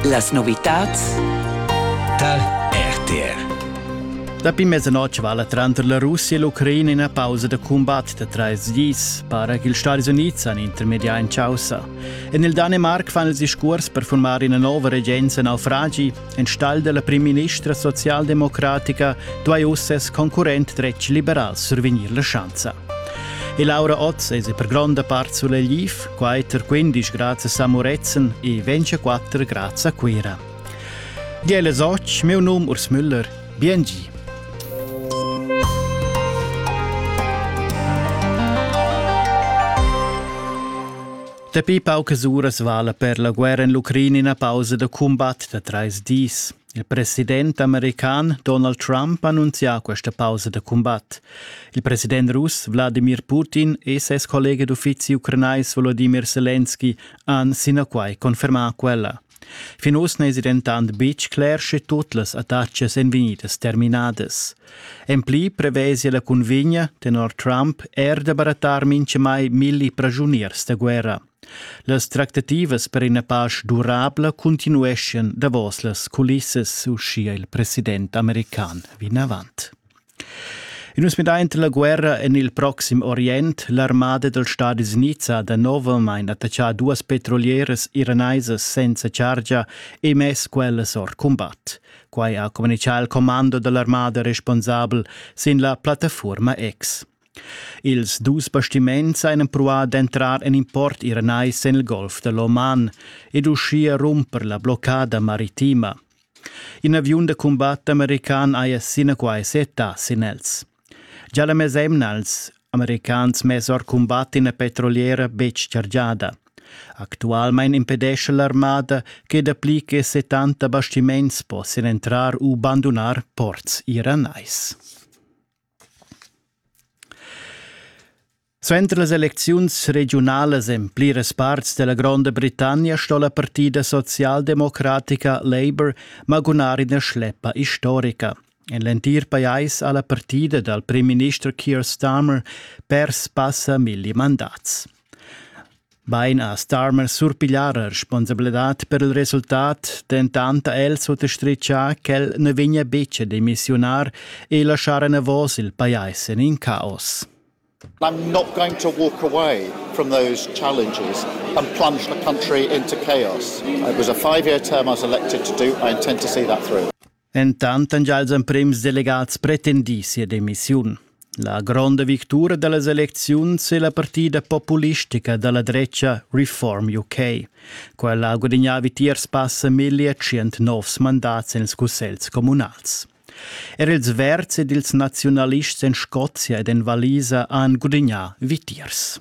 Las novitads dal RTR Dapi mezzanoc vala tranter la Russia e l'Ucraina ina pausa da cumbat da trais dis, para ch'ils Stati Unids han intermedià in chaussa. En il Danemarc fan els discurs per formar ina nova regenza naufragi. Enstagl della primministra socialdemocratica duai uss ses concurrent dretg liberal survegnir la schanza. E Laura Otz es per gronda part sulla LIF, Quater quindisch grazie a Muretzen e 24 grazie a Cuira. Gele soc, meu num Urs Müller, biengi. Dapi paucas uras vala per la guerra in l'Ucraina una pausa da combat da trais dis. Il president american Donald Trump annunzia questa pausa da combat. Il president russ Wladimir Putin e ses collega d'uffizi ucranais Volodimir Selenski han sinaquai confermà quella. Fin uss n'èsi dentant betg cler, sche tut las attacas èn vegnidas terminadas. En pli prevesia la cunvegna tenor Trump er da barattar mintgamai milli pragiuniers da guerra. Las tractativas per ina pasch durabla cuntinueschian davos las culissas, uschia il president american vinavant. In uns midaint la guerra en il proxim Orient, l'armada dals Stadis Unids ha danovelmain attaccà duas petrolieras iranaisas senza chargia e mess quellas or cumbat. Quai ha communitgà il commando da l'armada responsabel sin la plattafuorma X. Ils dus bastiments han empruà d'entrar en import iranais en il golf da l'Oman ed uschia rumper la bloccada maritima. In aviun da cumbat american haja sinaquai settà sin els. Gia la mesemna als americans mess or cumbat ina petroliera betg chargiada. Actualmain impedescha l'armada che dapli che 70 bastiments possian entrar u bandunar ports iranais. Suenter las elecziuns regiunalas en pliras parts della Gronda Britannia sto la partida socialdemocratica Labour magunar ina schleppa historica. En l'entir pajais ha la partida dal primminister Keir Starmer pers passa milli mandats. Bein ha Starmer surpiglià la responsabladad per il resultat, dentant ha el suttastritgà ch'el na vegnia betg a demissiunar e laschar enavos il pajais en in caos. I'm not going to walk away from those challenges and plunge the country into chaos. It was a five year term I was elected to do. I intend to see that through. Entant han gia ils emprims delegats pretendì sia demissiun. La gronda victura da las elecziuns è la partida populistica da la dretga Reform UK. Quella ha gudagnà vitiers passa 1100 novs mandats en ils cussegls communals. Er ils Verds ed ils naziunalists en Scozia ed en Valisa han gudagnà vitiers.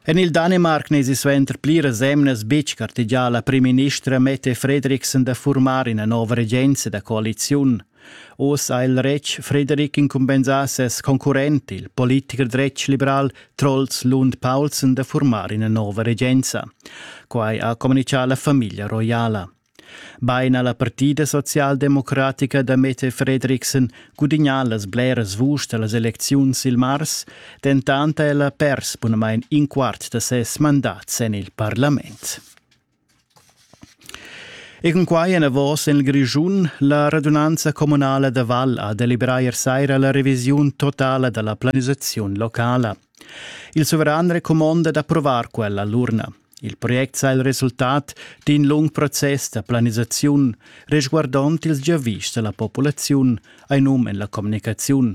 En il Danemarc n'esi suenter pliras emnas betg gartegià la primministra Mette Frederiksen da furmar ina nova regenza da coaliziun. Oz ha il retg Frederik incumbensà ses concurrent, il politicher dretg liberal Troels Lund Paulsen da furmar ina nova regenza. Quai ha communitgà la famiglia roiala. Bein ha la partida socialdemocratica da Mette Fredriksen gudignà las bleras vuschs da las elecziuns il mars, dentant ha ella pers bunamain in quart da ses mandat en il parlament. E cun quai enavos en il Grischun la radunanza communala da Val ha deliberà ier saira la revisiun totala da la planisaziun locala. Il suveran recumonda d'approvar quella l'urna. Il project sa il resultat d'in lung process da planisaziun resguardond ils giavischs da la populaziun, ei num en la communicaziun.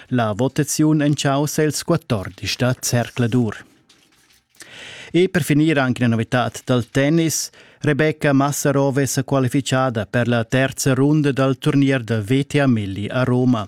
La votaziun enchaussa ils 14 da Zercladur. E per finir anche una novità dal tennis. Rebecca Massarove è qualificata per la terza runda dal turnier da VTA Milli a Roma.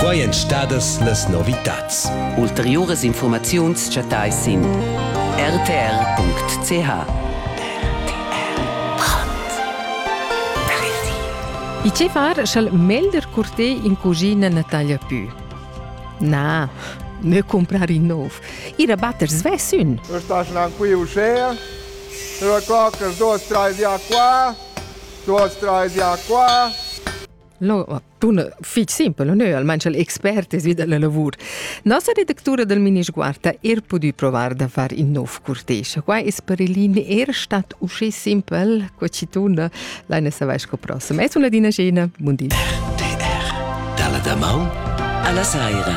Quai èn stadas las novitads. Ulteriuras infurmaziuns chattais sin rtr.ch. I che far sch'el melder curté in cugina na taglia pü? Na, me comprar in nov. Ir a batter svess ün. Eu stas nan qui uschè, eu cloc els dos, trais di a qua, Tuos trais ja qua. No, tun fich simpel, no? almain cha'l expert es vi da la lavur. Nossa redactura dal Minisguarda er pudü provar da far in nov curtej. Qua es per Elin er stat usché simpel co chi tuna, laina savair sco prossem. Es una dina scena, bun di. RTR, dalla damaun alla saira.